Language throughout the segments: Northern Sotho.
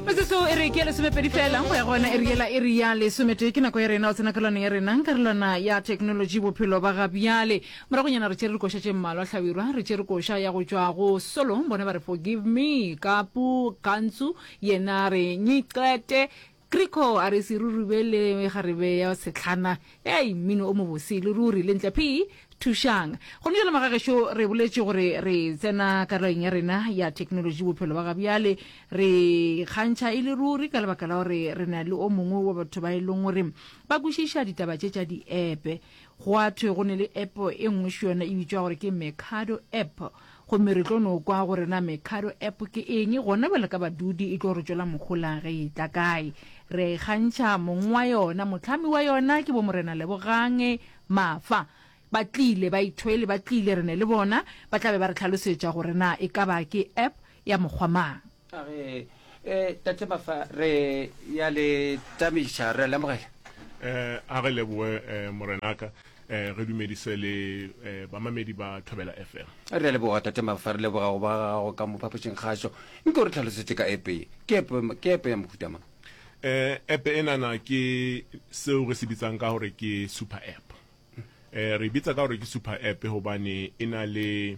metsotseo e re ke ya lesomepedi fela go ya go yona e re e re ya lesometee ke nako ya rena o tsena ka lwana ya rena ka lwana ya technology bophelo ba ga bjale moragonyana re tšere dikoša tše mmalwa tlhabirwa re tšere koša ya go tšwa go solo bone ba re forgive me kapu kantsu yena re nyiqete Kriko a re se rurube le kgarebe ya setlhana. Hei, mmino o mobose e le ruri. Lentle Phee, thušang. Gone bjale magagešo re boletše gore re tsena karolong ya rena ya theknolotši bophelo ba gabjale. Re ikgantšha e le ruri ka lebaka la gore re na le o mongwe wa batho ba e leng gore ba kwešiša ditaba tše tša diepe. Gwa thwe go ne le epo e nngwe šo yona e bitšwa gore ke Mercado App. Gomme re tlo no kwa gore na Mekado App ke eng, gona bjale ka badudi, e tlo re tšwela mohola ge e etla kae. Re a e kgantšha, mong wa yona, mohlami wa yona ke Bomorena Lebogang Mafa. Ba tlile, baithweli ba tlile, re ne le bona, ba tla be ba re hlalosetša gore na e ka ba ke App ya mokgwa mang. a re um tate mafa re ya le tamiša re lemogela um a re leboe um morenaka um re dumedise le um bamamedi ba thobela fm re leboga tate mafa re leboga go ba gago ka mo phapošeng kgašo nke o re tlhalosetše ka epe ke epe ya mohutama um epe e nana ke seo re se bitsang ka gore ke super app um re bitsa ka gore ke super app gobane e na le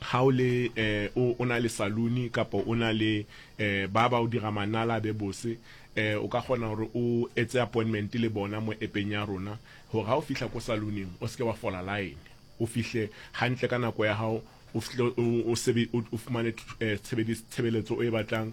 ga o le eh, o, o na le saluni kapo o na le eh, ba ba o dira manala a be bose eh, o ka kgona gore o etse appointment le bona mo epeng ya rona gore ga o fihla ko saluning o seke wa fola line o fihle gantle ka nako ya gago o fihle o, o, sebe, o, o fumane eh, tshebeletso o e batlang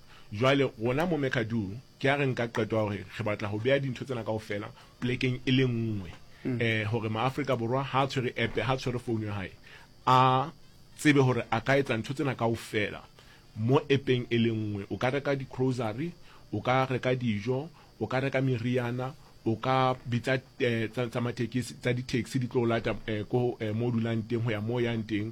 Jwale, gona mo Mekadu, ke a re nka qeto ya gore re batla go bea dintho tsena kaofela polekeng e le nngwe, e, gore Maafrika Borwa ha a tshwere app, ha a tshwere founu ya hae, a tsebe gore a ka etsa ntho tsena kaofela mo app-eng e le nngwe. O ka reka di-grocery, o ka reka dijo, o ka reka meriana, o ka bitsa tsa mathekisi, tsa di-taxi di tlo o lata ko mo o dulang teng go ya mo o yang teng,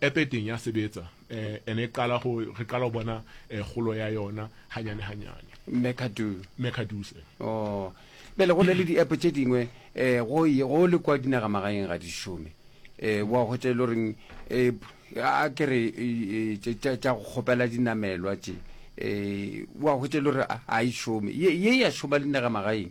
App e teng ya sebetsa and e qala go re qala go bona kgolo ya yona hanyane hanyane. Mekadoo. Mecadoos. Oh. Bjale go na le di-app tše dingwe um go go le kwa dinaga magaeng ga di šome um wa hwetša e le goreng um a ke re tša go kgopela dinamelwa tše um wa hwetša e le gore ga e šome ye ya šoma le dinaga magaeng.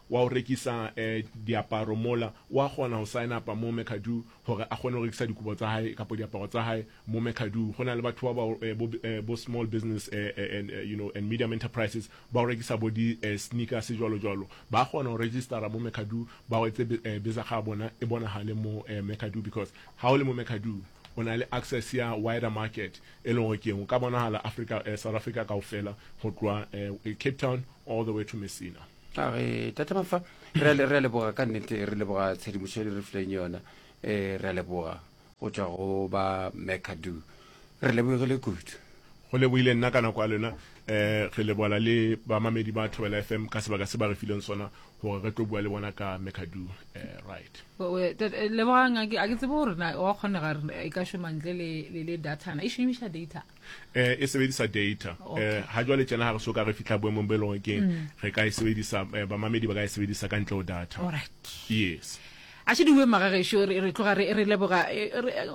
wa go rekisa diaparo mola, o a kgona go sign up-a mo McAdoo gore a kgone go rekisa dikobo tsa hae kapo diaparo tsa hae mo McAdoo. Go na le batho ba bo small business and you know and medium enterprises ba go rekisa bo di sneakers jwalo jwalo. Ba kgona go register-a mo McAdoo ba go etse bizakga ya bona e bonagale mo McAdoo because ha o le mo McAdoo o na le access ya wider market e leng gore keng o ka bonahala Africa South Africa kaofela go tloha Cape Town all the way to Messina. a re tate mafa re a leboga ka nnete re leboga tshedimošo le re fileng yona um re a leboga go tswa go ba mecadu re lebogile kudu go lebogile nna ka nako ya lena um re lebola le bamamedi ba thobela f m ka sebaka se ba re fileng sona gore re tlo bua le bona ka mecadu um eh, right lebogang a ke tsebe gore na wa kgonega e ka šomantle le datana e šomiša data eh e sebedisa data eh, okay. eh ha jwale tjena ha re soka re fihla boemong bo e leng ke mm. re ka e sebedisa eh, bamamedi ba ka e sebedisa ka ntle ho data alright yes a se diwe magagesho re tloga re re leboga eh, eh,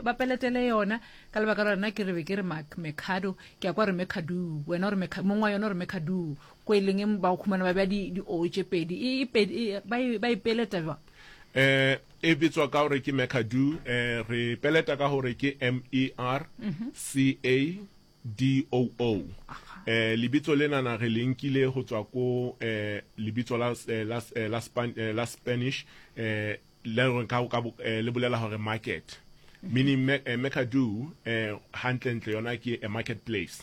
ba peletele yona ka lebaka la rena ke re be ke re mecado ke ya kwa re mecadu wena ore mongwe wa yona ore mecadu ko e leng ba go khumana ba bja di-o tse pedi e, e, e, ba e peleta jwa Eh, e bitswa ka gore ke mecadu eh, re peleta ka gore ke m e r c a d o o eh, lebitso lenana re le nkile go tswa ko eh, lebitso la, eh, la, eh, la, Span, eh, la spanish eh, le, re ka, ka, bo- eh, le bolela gore market meaning me, eh, mecadu eh, gantlentle yona ke a market place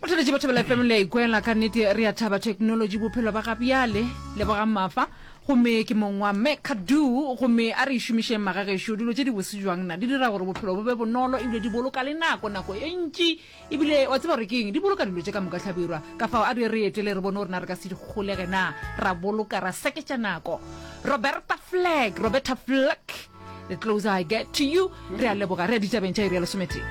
Batheletši ba Thobela FM le a ikwela, ka nnete re a thaba theknolotši bophelo ba ga bjale. Lebogang Mafa, gomme ke mong wa Mme Kadu, gomme a re e šomišeng magagešo. Dilo tše dibose bjang na, di dira gore bophelo bo be bonolo ebile di boloka le nako, nako ye ntši. Ebile wa tseba gore ke eng? Di boloka dilo tše ka moka hlabirwa. Kafao a re ye re etele re bone gore na re ka se di kgolege na, ra boloka, ra seketša nako. Roberta Fleck, Roberta Fleck, The Closer I Get to You. Re a leboga. Re ya ditabeng tša iri ya lesometee.